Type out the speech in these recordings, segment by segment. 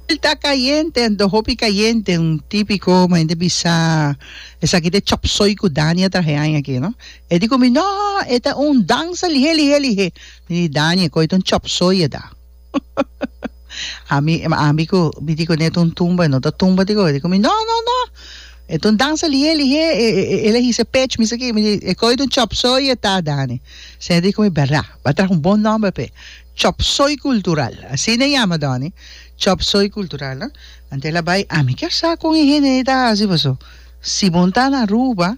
El ta cayente, anto hopi cayente, un tipico como hende bisa esaki ta e chop soy cu Dani a traha e aña aki no, e di cu mi no e ta un danza lihe lihe lihe, mi di Dani e coge ta un chop soy e da ami ami cu mi di cu n'e ta un tumba e no ta tumba ti go, e di cu mi no no no e ta un danza lihe lihe el a hisa e pech mi esaki mi di e coge ta un chop soy e ta Dani, sey e di cu mi berda, ba traha un bon nomber p'e. Chop Soy Cultural, asina e yama Donny, Chop Soy Cultural, antes el a bai, a mi kier sa con e hende ei ta haci paso si bon ta na Aruba,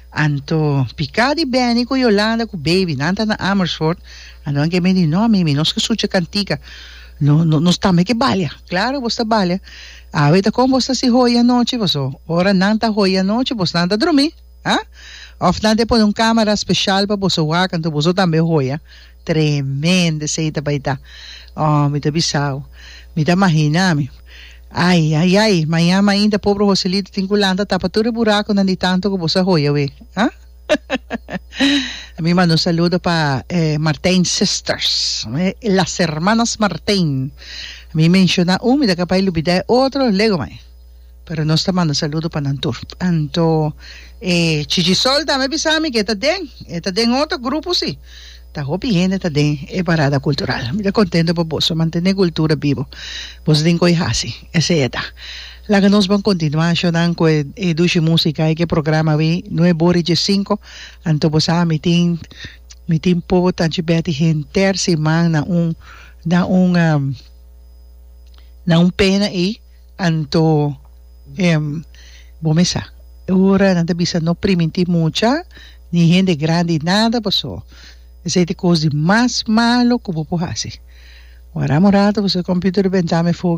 anto pica di beni cu Yolanda cu Baby, nan ta na Amersfoort, anto nan kier bini di no mimi, nos ke sucha cantica, no, no, nos tambe ke balia, claro bos ta balia, awe ta con bos ta haci hoy anochi, paso ora nan ta hoy anochi bos nan ta drumi, ha? Of nan ta e pone un camera special pa boso wak, anto boso tambe hoya. Tremendo esei ta bai ta. Oh, mi ta bisau. Mi ta mahina mi. Ai, ai, ai, mañan ainda pobre Joselito tin cu lanta tapa tur e buraconan di tanto cu boso a hoya awe. Ah? Mi manda un saludo pa e Martijn sisters, las hermanas Martijn. Mi menciona un, mi ta capai lubida e otro, lego mai. Pero nos ta manda saludo pa nan tur. Anto e Chichisol tambe a bisa mi ke e ta den, e ta den otro grupo si. Ta hopi hende ta den e parada cultural. Mi ta contento pa boso, mantene e cultura bibo. Boso tin con e haci. Esey e ta. Laga nos bon continua ashonan cu e e dushi musica e cu e programa awe nueve ora y dies cinco. Anto bo sa mi tin mi tin pobo tanchi beti henter siman na un na un na un pena ey. Anto em bo me sa ora nan ta bisa no priminti mucha ni hende grandi nada paso esei t'e kos di mas malo ku bo por hasi. Wara amo rato paso e computer rebentá me fo.